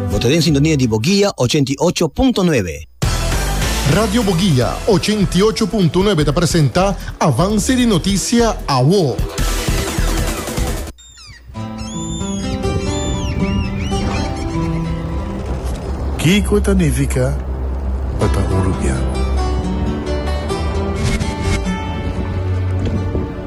Bo ta den sintonia di Boguia ochenta i ocho punto nuebe. Radio Boguia ochenta i ocho punto nuebe ta presenta Avance di Noticia Awo. Kiko ta nifica pa ta hurupiá?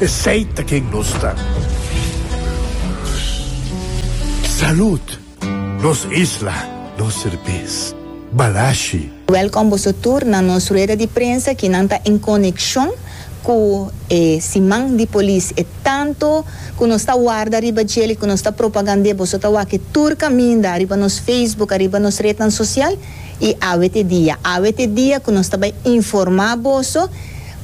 Esey ta ken nos ta. Salud! Nos isla, nos serbes. Balashi. Welkom boso tur na nos rueda di prensa ki nan ta en konekshon ku e siman di polis. E tantu ku nos ta warda riba djel i ku nos ta propagand'é boso ta wak e tur kaminda riba nos Facebook, ariba nos retnan sosial i awe te dia. Awe te dia ku nos ta bai informá boso.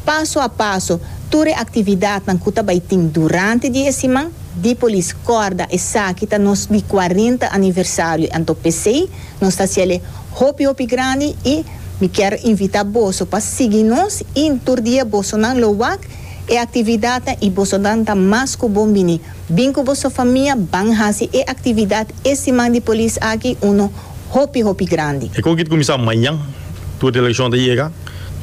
Paso a paso, tur e actividadnan cu ta bay tin durante di e siman di Polis Corda, esaki ta nos di cuarenta aniversario, anto pesey nos ta haciele hopi hopi grandi y mi kier invita boso pa sigui nos y tur dia bosonan lo wak e actividadnan y bosonan ta mas cu bon bini, bin cu boso famia ban haci e actividad e siman di Polis aki uno hopi hopi grandi. E cogit cuminsa mañan, tur delegacion ta yega.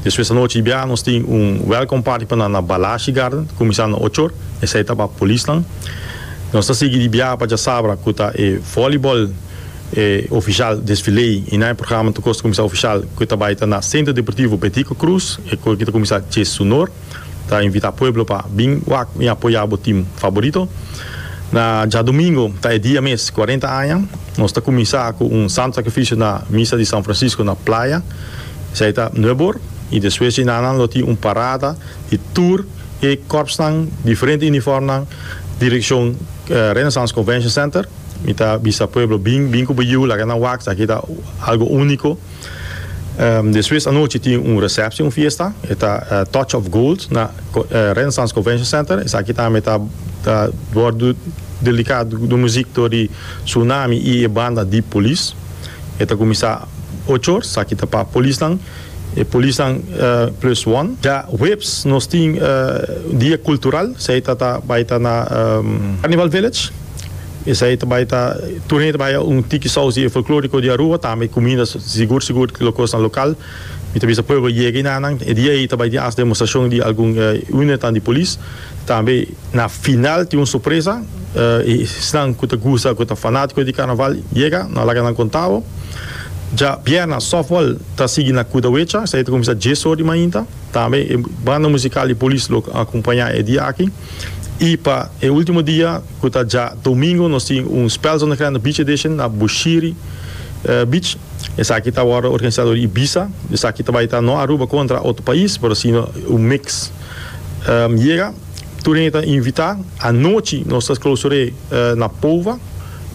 Despues anochi i bia nos tin un welcome party pa nan na Balashi Garden kuminsando ocho or, esei ta pa polisnan. Nos ta sigui di biaha pa Djasabra ku ta e volleyball e ofishal desfilei i nan e programa ta kosta kuminsá ofishal ku ta bai ta na Centro Deportivo Betico Cruz, e kor ki ta kuminsá djes su nor. ta invita pueblo pa bin wak y apoya bo team faborito. Na djadomingo ta e dia mes cuarenta aña. Nos ta cuminsa cu un santo sacrificio na misa di San Francisco na Playa. Esai ta nuebe or y despues dje nan nan lo tin un parada di tur e corpsnan diferente uniformnan direccion Renaissance Convention Center. Mi ta bisa pueblo bin bin cu bo yiu laga nan wak esaki ta algo unico. Despues anochi tin un recepcion, un fiesta, e ta Touch of Gold na Renaissance Convention Center. Esaki tambe ta ta wordu dedica di muziek tur di Tsunami y e banda di Police. E ta cuminsa ocho or, esaki ta pa polisnan, e polisnan plus one. Ya huebs nos tin dia cultural, esaki ta ta bay ta na Carnival Village. Esei ta bai ta, tur hende ta bai a un tiki sousi e folkloriko di Aruba, tambe e kumida sigur sigur lo kosnan lokal. Mi ta bisa prueba yega i na nan. E dia ei ta bai tin as demostrashon di algun unitannan di polis. Tambe na final tin un sorpresa, esnan ku ta gusta, ku ta fanatiko di karnaval yega, no laga nan konta bo. Dja bierna softball ta sigui na Kudawecha, esei ta kuminsá dies or di mainta. Tambe e banda musikal di polis lo akompañá e dia aki. I pa e último dia Cu ta dja domingo nos tin un Spel Zonnegrande Beach Edition na Bushiri Beach. Esaki ta wordo organisa door Ibiza. Esaki ta bay ta no Aruba contra otro pais, pero si un mix. Yega, tur hende ta invita. Anochi nos ta clausure na Pova.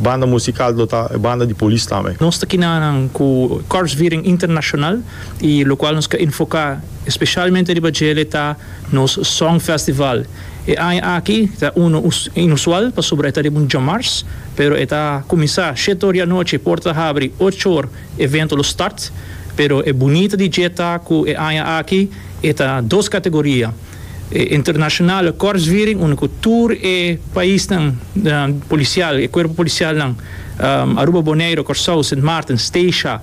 Banda musical lo ta e banda di Polis tambe. Nos ta kina nan cu Korpsviering International y locual nos ke enfoca especialmente riba djele ta nos Songfestival. E aña aki ta unu inusual pasobra e ta riba un djamars, pero e ta kuminsá shete or di anochi, port ta habri ocho or, evento lo start. Pero e bunita di dje ta ku e aña aki e ta dos kategoria, e internashonale kòrsviring unda ku tur e paisnan polisial, e kuerpo polisialnan, Aruba, Boneiru, Kòrsou, Sint Maarten, Steisha,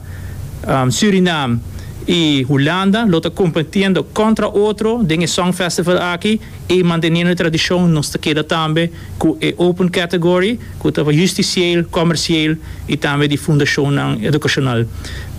Surinam, y Hulanda lo ta competiendo contra otro den e song festival aki y manteniendo e tradicion nos ta keda tambe cu e open category cu ta justicieel, comercieel y tambe di fundacionnan educacional.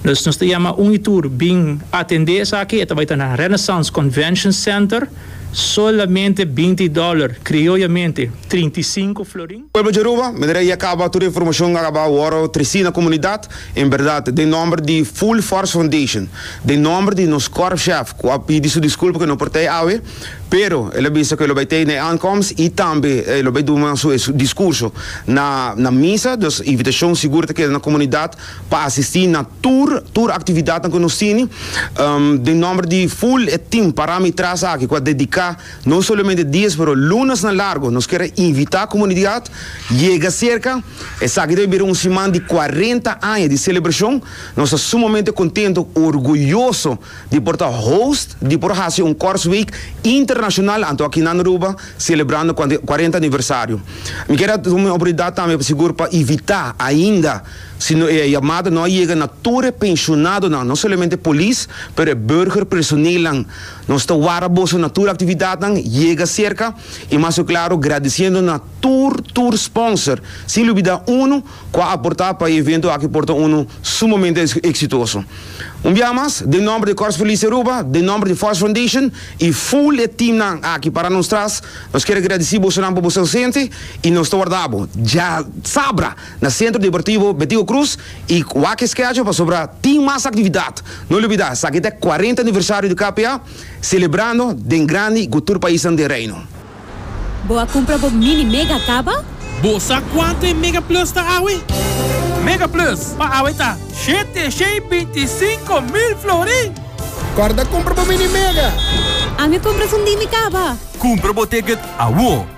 Dus nos ta yama un y tur bin atende esaki, e ta bay ta na Renaissance Convention Center, solamente binti dollar, crioyamente trinta y cinco florin. Pueblo di Aruba, mi ta reia caba tur e informacion a caba worde treci na comunidad, en berdad, den nomber di Full Force Foundation, den nomber di nos korpschef cu a pidi su disculpa cu e no por ta ei awe, pero el a bisa cu e lo bay ta ei na e aankomst y tambe e lo bay duna su e discurso na na misa, dus invitacion sigur ta keda na comunidad pa asisti na tur tur actividadnan cu nos tini, den nomber di full e team para mi tras aki cu a dedica. No solamente dies pero lunas na largo nos kier a invita comunidad yega cerca esaki ta bai bira un siman di cuarenta aña di celebracion nos ta sumamente contento orgulloso di por ta host di por haci un Korsweek internacional anto aki nan Aruba celebrando cuarenta aniversario mi kier a tuma e oportunidad tambe pa sigur pa invita ainda si no e yamada no a yega na tur e pensionadonan no solamente polis pero e burger personeelnan. Nos ta wara boso na tur actividadnan Yega Cerca y mas oc claro gradiciendo na tur tur sponsor sin lubida uno cu a aporta pa e evento aki por ta uno sumamente exitoso. Un bia mas den nomber de Corps Police Aruba, den nomber de Force Foundation y full e teamnan aki para nos tras nos kier a gradici bosonan pa boso ausente y nos ta wardabo. Dja sabra! Na Sentro Deportivo Betigo Cruz y wak schedule pasobra tin mas actividad. No olbida esaki ta e cuarenta aniversario di KPA celebrando den grandi y cu tur paisnan den Reino. Bo a cumpra bo Mini Mega caba? Bo sa cuanto e Mega Plus ta awe? Mega Plus pa awe ta shete shen y binti sinco mil florin! Corda cumpra bo Mini Mega! Ami cumpra su Mini Caba! Cumpra bo ticket awor!